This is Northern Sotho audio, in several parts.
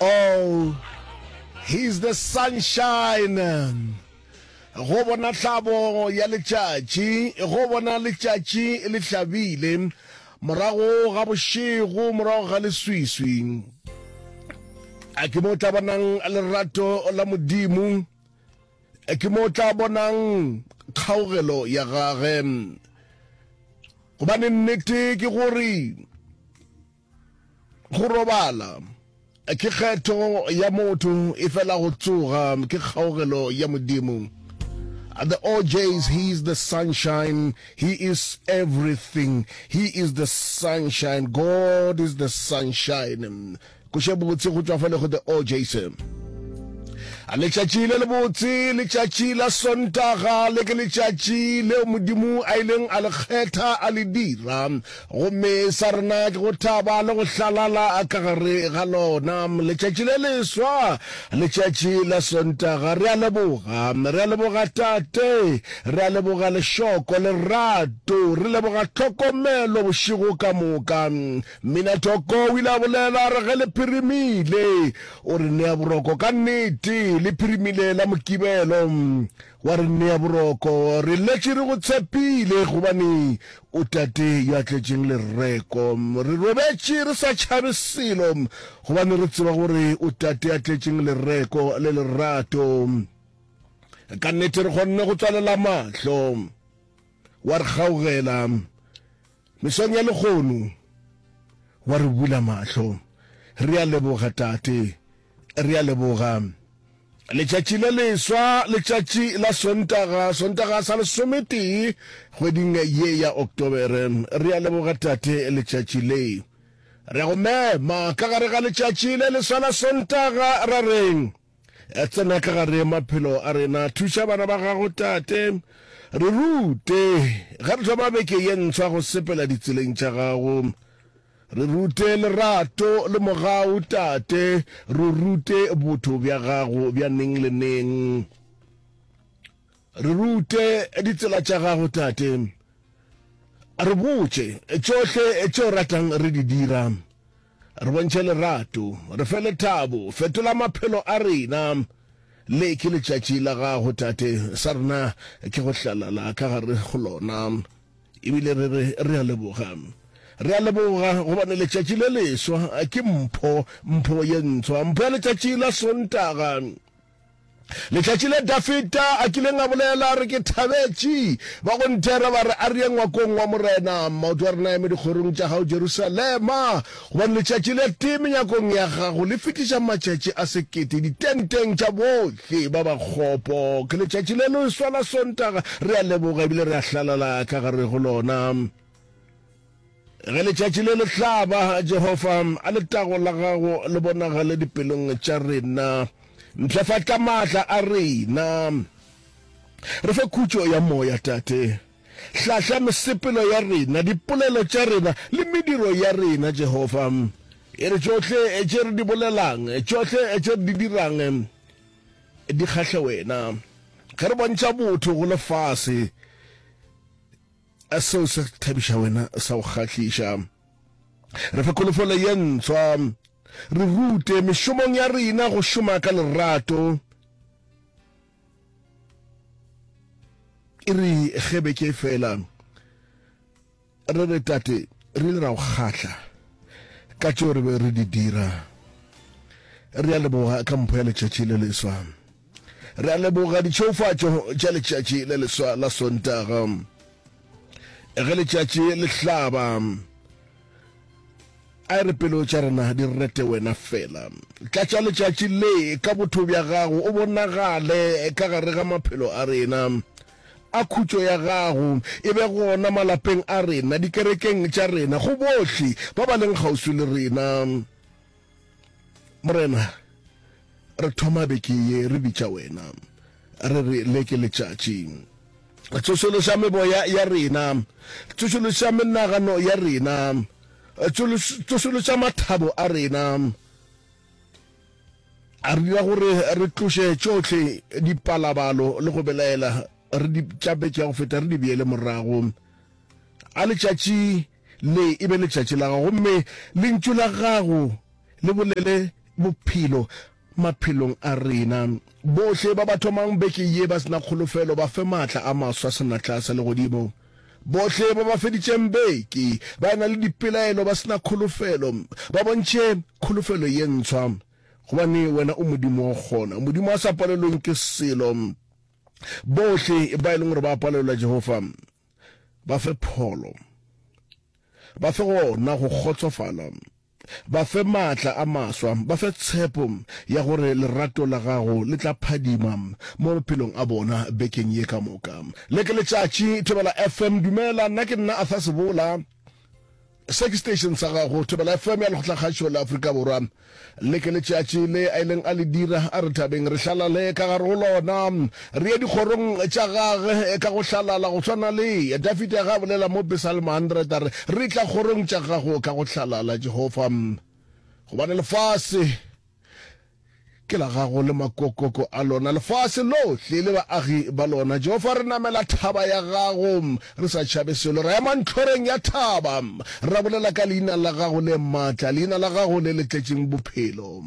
oh he's the sunshine go bona tlhabo ya letšatši go bona letšatši le hlabile morago ga bošego morago ga leswiswi a ke mo tla bonang lerato la modimo a ke mo tla bonang kgaogelo ya gage gobane nnete ke gore Go robala ke kgetho ya motho e fela go tsoga ke kgaogelo ya Modimo. The OJs, he is the sunshine, he is everything, he is the sunshine, God is the sunshine. Koše botse go tšwa fale go the OJs. A letšatši le le botse, letšatši la Sontaga le ke letšatši leo Modimo a ileng a le kgetha a le dira Gomme sa rena ke go thaba le go hlalala ka gare ga lona, letšatši le leswa, letšatši la Sontaga. Re a leboga. Re a leboga, Tate. Re a leboga Lešoko, lerato. Re leboga tlhokomelo bošego ka moka. Mminatoko o ile a bolela, a re, Ge le phirimile, o re nea boroko. Ka nnete, le phirimile la Mokibelo. Wa re nea boroko. Re letše re go tshepile gobane o Tate yo a tletšeng lereko. Re robetše re sa tšhabe selo gobane re tseba gore o Tate ya tletšeng lereko le lerato. Ka nnete re kgonne go tswalela mahlo. Wa re kgaogela. Mesong ya lehono wa re bula mahlo. Re a leboga, Tate. Re a leboga. Letšatši le leswa, letšatši la Sontaga, Sontaga sa lesometee kgweding ye ya Oktobere. Re a leboga, Tate, letšatši le. Re a go mema ka gare ga letšatši le leswa la Sontaga, ra reng? Tsena ka gare maphelo a rena. Thuša bana ba gago, Tate. Re rute ge re thoma beke ye ntshwa go sepela ditseleng tša gago. Re rute lerato le mogau, Tate. Re rute botho bja gago bja neng le neng. Re rute ditsela tša gago, Tate. Re botše tšohle tše o ratang re di dira. Re bontšhe lerato, re fe lethabo, fetola maphelo a rena. Le ke letšatši la Gago, Tate. Sa rena ke go hlalala ka gare go lona. Ebile re re, Re a leboga. Re a leboga, gobane letšatši le leswa ke mpho, mpho ye ntswa, mpho ya letšatši la Sontaga. Letšatši le Dafita a kileng a bolela re ke thabetši, ba go nthera ba re, a re ye ngwakong wa Morena, maoto a rena eme dikgorong tša gago Jerusalema, gobane letšatši le tee menyakong ya gago le fetiša matšatši a sekete ditenteng tša bohle ba bakgopo. Ke letšatši le leswa la Sontaga, re a leboga ebile re a hlalala ka gare go lona. Ge letšatši le le hlaba, Jehofa a letago la gago le bonagale dipelong tša rena. Mpshafatša maatla a rena. Re fe khutšo ya moya, Tate. Hlahla mesepelo ya rena, dipolelo tša rena le mediro ya rena, Jehofa. E re tšohle tše re di bolelang, tšohle tše re di dirang di kgahle wena. Ge re bontšha botho go lefase, A seo se thabiša wena sa go kgahliša? Re fe kholofelo ye ntswa. Re rute mešomong ya rena go šoma ka lerato. E re ge beke e fela re re, Tate, re ile ra go kgahla ka tšeo re be re di dira. Re a leboga ka mpho ya letšatši le leswa. Re a leboga ditšheofatšo tša letšatši le leswa la Sontaga. Ge letšatši le hlaba, a re pelo tša rena di rete wena fela. Tlatša letšatši le ka botho bja gago, o bonagale ka gare ga maphelo a rena. A khutšo ya gago e be gona malapeng a rena, dikerekeng tša rena, go bohle ba ba leng kgauswi le rena. Morena, re thoma beke ye re bitša wena, re re le ke letšatši. Tsošološa meboya ya rena, tsošološa menagano ya rena, tsošološa mathabo a rena, a re dira gore re tloše tšohle dipalabalo le go belaela re di tša beke ya go feta re di beele morago a letšatši Le e be letšatši la gago, gomme Lentšu la gago le bolele bophelo maphelong a rena. Bohle ba ba thomang beke ye ba se na kholofelo, ba fe maatla a maswa a senatla sa legodimo. Bohle ba ba feditšeng beke ba ena le dipelaelo, ba se na kholofelo, ba bontšhe kholofelo ye ntshwa, gobane Wena o Modimo wa go kgona, Modimo a sa palelweng ke selo. Bohle ba e leng gore ba palelwa, Jehofa, Ba fe pholo. Ba fe gona go kgotsofala. Ba fe maatla a maswa. Ba fe tshepo ya gore lerato la Gago le tla phadima mo maphelong a bona bekeng ye ka moka. Le ke letšatši, Thobela FM. Dumela, nna ke nna Arthur Sebola. Se ke station sa gago, Thobela FM ya Lekgotlakgašo la Afrika Borwa. Le ke letšatši le a ileng a le dira, a re thabeng re hlalale ka gare go lona, re ye dikgorong tša gage ka go hlalala, go swana le Dafide ge a bolela mo Pesalmo 100 a re, Re tla kgorong tša gago ka go hlalala, Jehova, gobane lefase ke la gago le makokoko a lona, lefase lohle le baagi ba lona. Jehofa, re namela thaba ya gago, re sa tšhabe selo. Ra ema ntlhoreng ya thaba, ra bolela ka leina la gago le maatla, leina la gago le le tletšeng bophelo.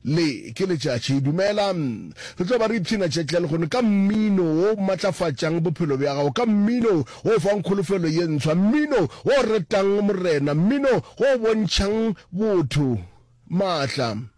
Le ke letšatši. Dumela, re tlo ba re ipshina tšetlele gono ka mmino wo o matlafatšang bophelo bja gago, ka mmino wo o fang kholofelo ye ntshwa, mmino wo o retang, Morena, mmino wo o bontšhang botho maatla.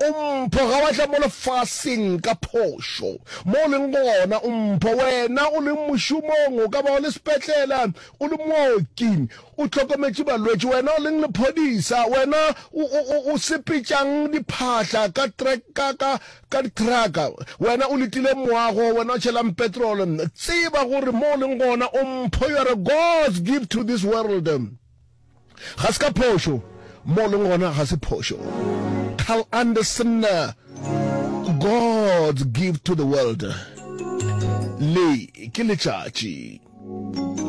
O mpho, ga wa tla mo lefaseng ka phošo. Mo o leng gona, o mpho. Wena o leng mošomong, o ka ba o le sepetlela, o le mooki, o hlokometše balwetši, wena o leng lephodisa, wena o, o, o, o sepetšang diphahla ka trak, ka, ka, ka dithraka, wena o letile moago, wena o tšhelang petrol, tseba gore mo o leng gona, o mpho. You are a God's gift to this world. Ga se ka phošo, mo o leng gona ga se phošo. Carl Anderson, God's Gift to the World. Le ke letšatši.